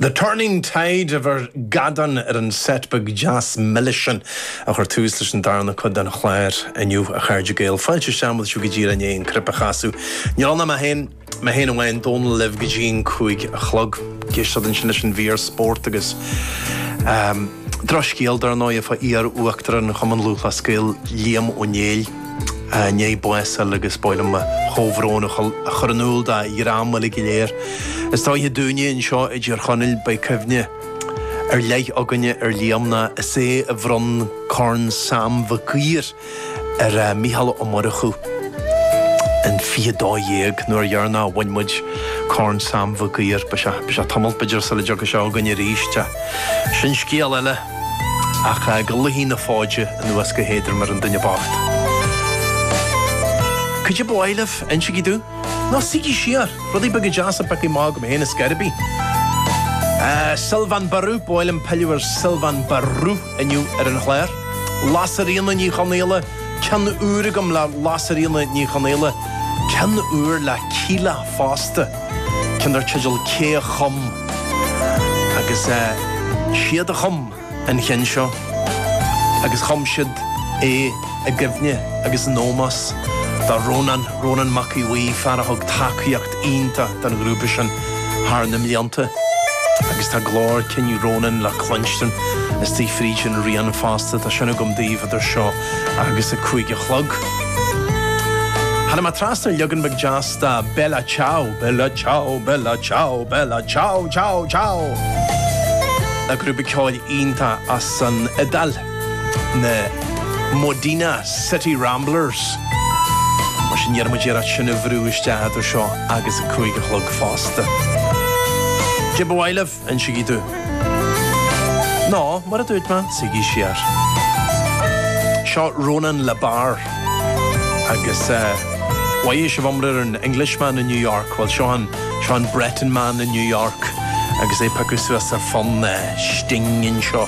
The Turning Tide of a bhí ar Gadorn ar an seit bheag deas milis sin a chuir tús leis an darna cuid den chlár inniu a chairde Gael. Fáilte isteach, muid seo go dtí Dé hAoine An Cruipe a chasadh. Níl ann ach mé féin, mé féin amháin, Dónall libh go dtí an cúig a chlog. Ag éisteacht ansin leis an mhír spórt agus drochscéal dar ndóigh fá iar-uachtarán Chumann Lúthchleas Gael, Liam Ó Néill. I ndiaidh bás a fháil agus ba mhaith liom mo chomhbhrón a chur in iúl dá dhream uilig go léir, is dóiche dúinne anseo i dTír Chonaill, beidh cuimhne ar leith againne ar Liam ná is é a bhronn Corn Sam Mhic Uidhir ar Mhícheál Ó Murchú in 2012 an uair dheireanach a bhain muid Corn Sam Mhic Uidhir. Beidh sé tamalt b'fhéidir sula dtiocfaidh sé againn arís, ach sin scéal eile. Ach go luífidh na fóide anuas go héadrom ar an duine bocht. Caidé ba mhaith libh, insígí domh, nó suígí siar, rudaí beaga deasa, pioctha amach agam féin ar scor ar bith. Sylvain Barrou, ba mhaith liom pilleadh ar Sylvain Barrou inniu ar an chlár. Lasairfhíona Ní Chonaola, ceann úr agam le Lasairfhíona Ní Chonaola, ceann úr le Kíla fosta. ceann dar teideal Cé a Chum? agus iad a chum an ceann seo agus chum siad é i gcuimhne agus in ómós do Rónán, Rónán Mac Aodh Bhuí, fear a thug tacaíocht iontach don ghrúpa sin thar na mblianta agus tá glór cinn Rónán le cluinstin istigh fríd an rian fosta, tá sin agam daoibh idir seo agus a cúig a chlog. Tháinig mé trasna ar leagan beag deas fosta Bella ciao! Bella ciao! Bella ciao! Bella ciao ciao ciao! An grúpa ceoil iontach as an Iodáil, na Modena City Ramblers. Mar sin, déanfaidh muid iarracht sin a bhrú isteach idir seo agus a cúig a chlog fosta. Cibé ba mhaith libh Insígí domh. Nó, mar a dúirt mé, suígí siar. Seo Ronan Le Bars agus chuala sibh iomrá ar an Englishman in New York? Bhuel, seo an, seo an Breton Man in New York agus é ag piocadh suas ar fhonn Sting anseo.